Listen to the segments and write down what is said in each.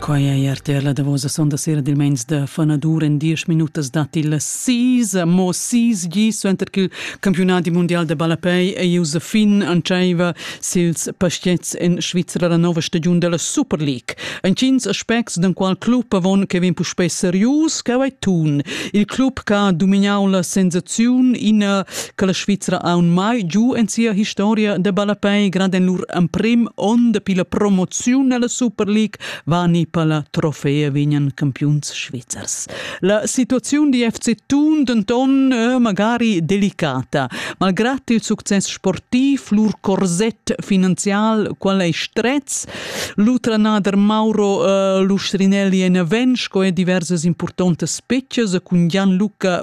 Quai è RTL la davosa sonda sera dil meins da fanadur. En diesch minutas dat il sis, mo sis gi suenter ch'il campiunadi mundial de ballapei ei ius a fin antscheiva sils pastets en Svizra la nova stagiun della Super League. Entgins aspects den qual club avon che vegn puspei serius, che vai tun. Il club che ha dominau la sensaziun, ina che la Svizra ha mai giu en sia historia de ballapei grand en lur emprim onn de pila promoziun alla Super League va ni pala trofea vignan campiuns svizzers. La situazione di FC Thun denton è magari delicata. Malgrad il succes sportiv, lur corset finanzial qual ei strets, l'utranader Mauro uh, Lustrinelli en avensch co diverses importantes specchas cun Jan Luca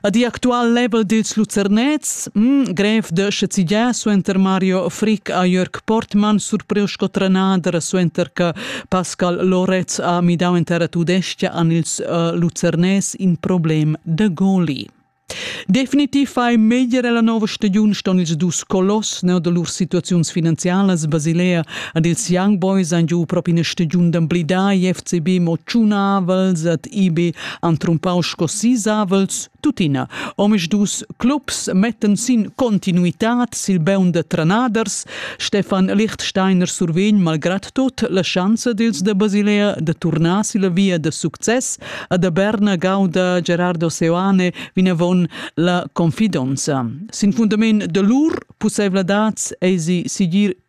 Ad igl actual level dils Lucernets, mm, grev de schezigiar suenter Mario Frick a Jörg Portmann surpriu sco trenader suenter che Pascal Loretz ha midau in terra tudestia an ils uh, Lucernes in problem de goli. Definitiv fai meglier la nova stagiun ston ils dus colos neu de lur situaziuns finanzialas Basilea ad ils Young Boys an giu propi ina stagiun d'amblidai FCB mo tschunavels ad IB han trumpau sco sis avels tuttina. Omisdus clubs mettan sin continuitad sil beun de trenaders. Stefan Lichtsteiner survegn malgrad tot la schanza dils de Basilea de turnar silla via de success a da Berna gauda Gerardo Seoane vinavon la confidonza. Sin fundament de lur pussevladads eisi sigir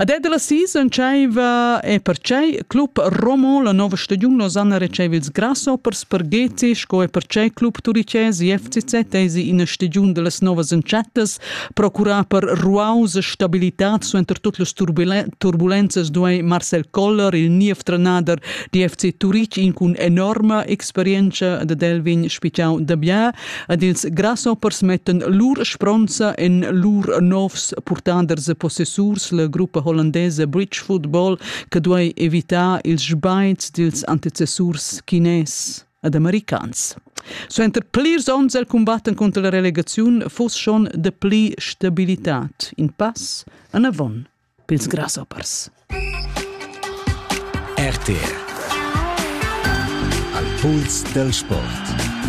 Ad ed la season tschaiva e pertgei club Romo la nova stagiun Losanna retscheiva ils grasshoppers per Gezi sco e pertgei club turichès e FCZ eisi ina stagiun dallas novas entschettas procurà per ruaus e stabilitad suenter tut las turbulenzas duei Marcel Koller il niev trenader di FC Turich in cun enorma experienza da Delvin spigiau da bia ed ils grasshoppers mettan lur spronza en lur novs purtaders e possessurs, la gruppa hollandesa Bridge Football, che duai evitar ils sbains dils antecessurs chines ed americans. Suenter plirs onns el cumbatten contra la relegaziun fuss schon de pli stabilitad in pass anavon pils grasshoppers. RTR Al puls del sport